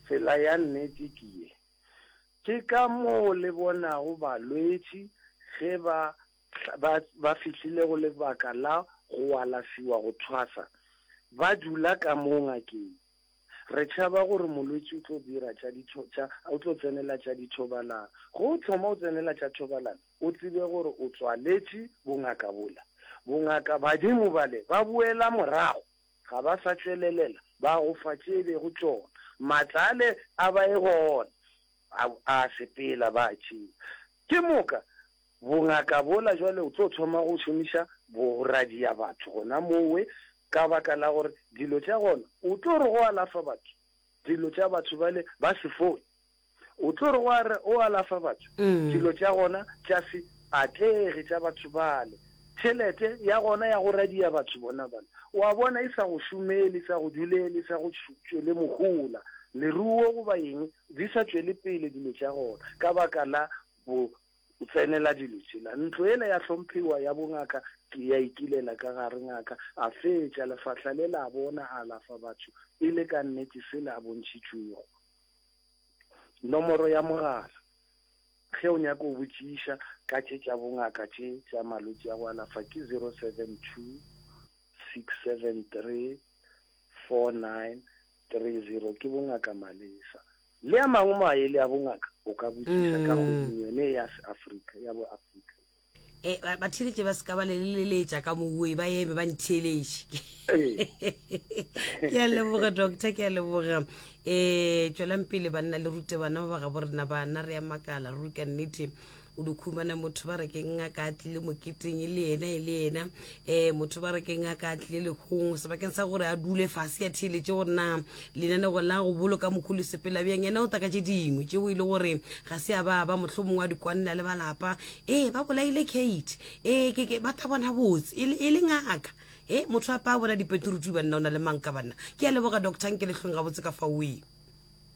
Tsela ya nnete ke ye. Ke ka moo le bonago balwetši ge ba ba, ba fihlile go lebaka la go alafiwa go thwasa, ba dula ka moo ngakeng. Re tšhaba gore molwetši o tlo dira tša ditho, tša, o tlo tsenela tša dithobalano. Ge o thoma o tsenela tša thobalano, o tsebe gore o tswaletše bongaka bola. Bongaka badimo bale ba boela morago. Ga ba sa tšwelelela ba go fa tše e bego tšona maatla ale a ba e gona a a sepela ba a tšea. Ke moka bongaka bola jwale o tlo thoma go šomiša boradia batho gona mowe ka baka la gore dilo tša gona o tlo re go alafa batho dilo tša batho bale ba sefoi. O tlo re wa re o alafa batho? Dilo tša gona tša se atlege tša batho bale, tšhelete ya gona ya go radia batho bona bale, o a bona, e sa go šomele, e sa go dulele, e sa go tšwele mohola, leruo goba eng, di sa tšwele pele dilo tša gona ka baka la bo tsenela dilo tšela. Ntlo yela ya hlomphewa ya bongaka ke ya ikilela ka gare. Ngaka a fetša lefahla le la bona a alafa batho e le ka nnete sela a bontšhitšwego. Nomoro ya mogala, ge o nyaka go botšiša ka tše tša bongaka tše tša malwetši a go alafa ke 072 673 4930, ke bo Ngaka Malesa. Le a mangwe maele a bongaka o ka botšiša ka kgweding yone e ya se Afrika, ya bo Afrika. e ba theletše ba se ka ba le leleletša ka mowe ba eme ba ntheletše ke a leboga doctor ke a leboga um e, tswelang pele banna le rute bana ba ba ga bo rena bana re ya makala ruri ka nnete o dikhumana motho ba re ke ngaka a tlile moketeng e le ena e le ena um motho ba re keng a ka tlile lekgong sebakeng sa gore a dule fase ya theeletše gore na lenanego la go boloka mokgolo sepela bjang yena o taka tše dingwe tšeo e le gore ga se a ba ba motlho mongwe wa dikwanela le balapa ee ba bolaile kate ee keke ba ta bona botse e, e le ngaka e motho a pa bona dipeturutu banna o na le manka banna ke a leboga doctor nke letlhong ga botse ka faoe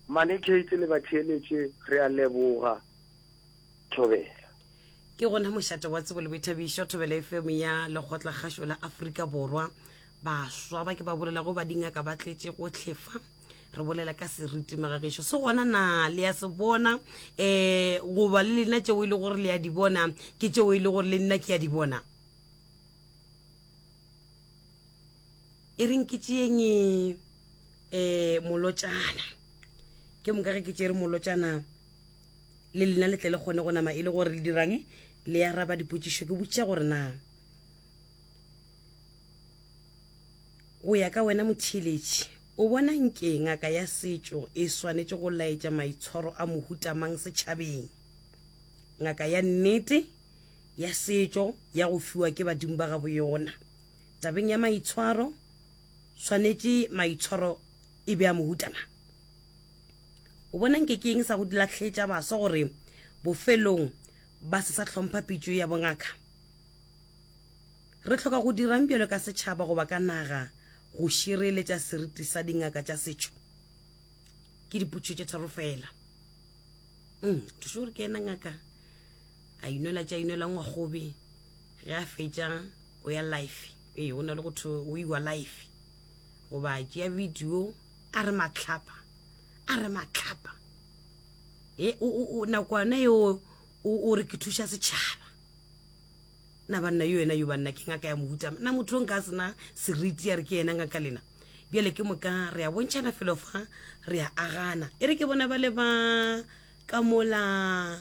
mane kate le batheeletše re a leboga thobela ke gona mošate wa tsebo le boithabišo thobela efemo ya lekgotlakgašo la aforika borwa baswa ba ke ba bolelago ba dingaka ba tletše go tlhefa re bolela ka seriti magagešo se gona na le ya se bona um goba le lena tšeo e le gore le ya di bona ke tšeo e le gore le nna ke ya di bona e reng ke tšeeng um e, molotšana ke moka ge ke tšere molotšana le lena le tle le kgone go nama e le gore le dirang le ya raba dipotšišo ke botšiša gore na go ya ka wena motheeletši o bona nke ngaka ya setšo e swanetše go laetša maitshwaro a mohutamang setšhabeng ngaka ya nnete ya setšo ya go fiwa ke badimo ba gabo yona tabeng ya maitshwaro swanetše maitshwaro e be a mohutana O bona nke ke eng sa go lahletša baswa gore bofelong ba se sa hlompha pitšo ya bongaka? Re hloka go dirang bjalo ka setšhaba goba ka naga go šireletša seriti sa dingaka tša setšo? Ke dipotšišo tše tharo fela. Mm, thušo gore ke ena ngaka a inwela tša inwela ngwagobe ge a fetša o ya life ee go na le go tho o iwa life goba tšea video a re matlhapa a re matlhapa e nakwana eo o re ke thuša setšhaba na banna yo ena yo banna ke ngaka ya mohuta na motho o nka sena seriti ya re ke ena ngaka lena bjale ke moka re a bontšhana felo fa re a agana e re ke bona ba le ba ka mola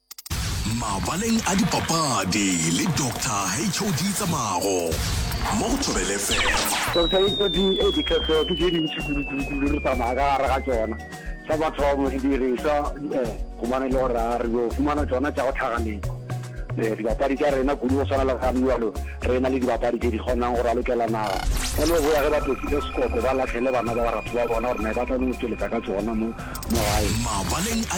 Mabaleng a dipapadi le Doctor HOD Tsamago mo go Thobele FM. Doctor HOD, ee dikhefeo ke tše dintši kudukudukudu re tsamaya ka gare ga tšona. Sa mathomo didirišwa um gobane e le gore a re yo fumana tšona tša go tlhaga leko um dibapadi tša rena kudu go swana le ga mjalo re na le dibapadi tše di kgonang go ralokela naga ka no boya ge ba tokile sekoko ba lahlele bana ba baratho ba bona gore na ba tla no tšweletsa ka tšona mo gae. Mabaleng a